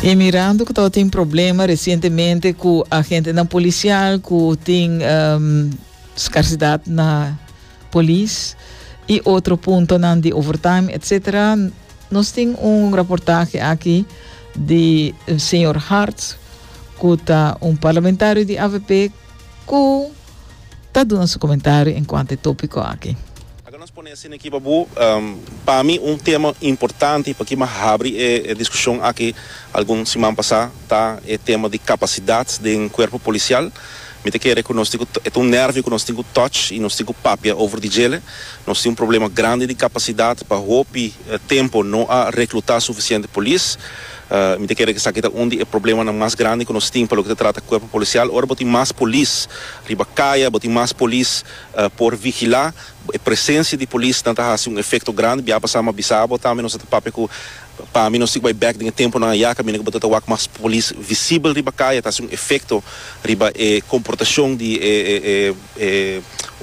E mirando cu tawata tin problema recientemente cu agentenan policial cu tin um, scarsidad na polis y otro puntonan di overtime, etcetera. Nos tin un reportaje aki di señor Hart cu ta un parlamentario di avp cu ta duna su comentario en cuanto e topico aki. Aca nos pone asina aki pa bo, pa mi un tema importante pa ki mi a habri e discusion aki algun siman pasa ta e tema di capacidad den cuerpo policial. Mi ta kere cu nos tin cu e ta un nervio cu nos tin cu touch y nos tin cu papia over di djele. Nos tin un problema grandi di capacidad pa hopi tempo no a recluta suficiente polis. Mi ta kere ku esaki ta un di e problemanan mas grandi ku nos tin pa loke ta trata Kuerpo Polisial. Ora bo tin mas polis riba kaya, bo tin mas polis por vigilá, e presensia di polis nan ta hasi un efekto grandi. Biaha pasá mi a bisa bo tambe, nos a ta papia ku pa mi nos tin ku bai bèk den e tempunan ayá kaminda ku bo ta ta wak mas polis visibel riba kaya. Ta hasi un efekto riba e komportashon di e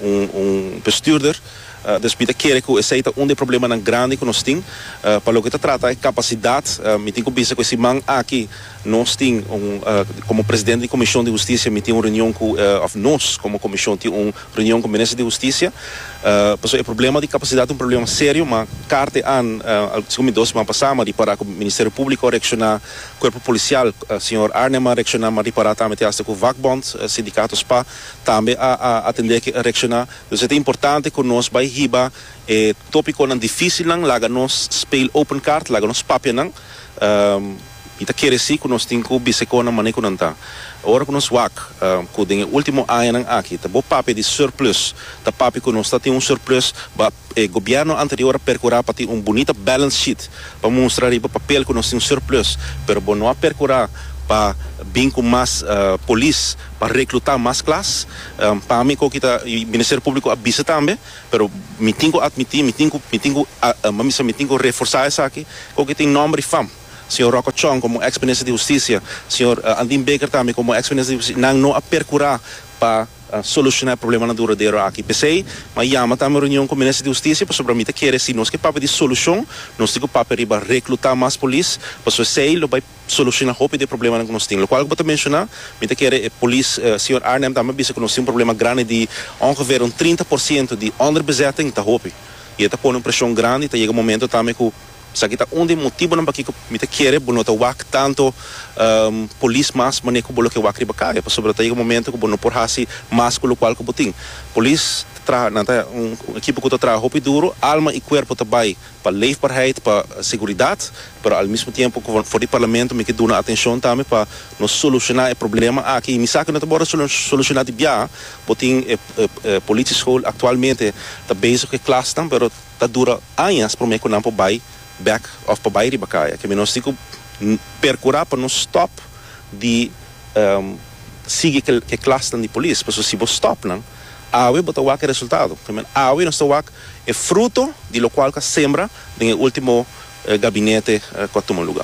un bestuurder. Dòs mi ta kere ku esei ta un di e problemanan grandi ku nos tin. Pa loke ta trata e kapasidat, mi tin ku bisa ku e siman aki nos tin un, komo presidente di komishon di hustisia mi tin un reunion ku, òf nos komo komishon tin un reunion ku minister di hustisia. Pasobra e problema di kapasidat ta un problema serio, ma kar te an, sigur mi dòs siman pasá, mi a ripará ku Ministerio Públiko a reakshoná, Kuerpo Polisial, señor Arnhem a reakshoná, mi a ripará tambe te asta ku Vakbond, Sindikato spa, tambe a atendé a reakshoná. Entonces ta importante cu nos bay hiba e topiconan dificilnan, laga nos speel open kaart, laga nos papia nan, y ta kere si cu nos tin cu biseconan manera cu nan ta. Ora cu nos wak cu den e ultimo añanan aki ta bo papia di surplus, ta papia cu nos ta tin un surplus, ba e gobierno anterior a percura pa tin un bunita balance sheet pa mustra riba papel cu nos tin surplus, pero bo no a percura pa bin cu mas polis pa recluta mas klas. Pa mi cu kita Ministerio Publico a bisa tambe, pero mi tin cu admiti, mi tin cu, mi tin cu misa mi tin cu reforsa esaki, cu aki tin nomber y fam, Señor Rocco Chong como ex Minister di Husticia, Señor Andin Baker tambe como ex Minister di Husticia, nan no a percura pa soluciona e problemanan duradero aki. P'esey m'a yama tambe un reunion cu Minister di Husticia pasobra mi ta kere si nos ke papia di solucion, nos tin cu papia riba recluta mas polis, pasobra esey lo bay soluciona hopi di e problemanan cu nos tin. Locual cu bo ta menciona, mi ta kere e polis Señor Arnhem tambe a bisa cu nos tin un problema grandi di ongeveer un trinta por ciento di onderbezetting ta hopi y e ta pone un presion grandi y ta yega un momento tambe cu esaki ta un di e motibonan pakico mi ta kere bo no ta wak tanto polis mas manera cu bo lo ke wak riba caye pasobra ta yega un momento cu bo no por haci mas cu locual cu bo tin. Polis ta traha nan ta un ekipo cu ta traha hopi duro alma y cuerpo ta bay pa leefbaarheid, pa seguridad, pero al mismo tiempo cu for di Parlamento mi ke duna atencion tambe pa nos soluciona e problema aki y mi sa cu no ta por soluciona di biaha, bo tin e e politie school actualmente ta bezig cu e klasnan pero ta dura añas prome cu nan por bay bek of por bay riba caya ke mi nos tin cu percura pa no stop di sigui cu e klasnan di polis pasobra si bo stop nan awe bo ta wak e resultado, awe nos ta wak E fruto di lokual ku a sembra den e último gabinete ku a tuma luga.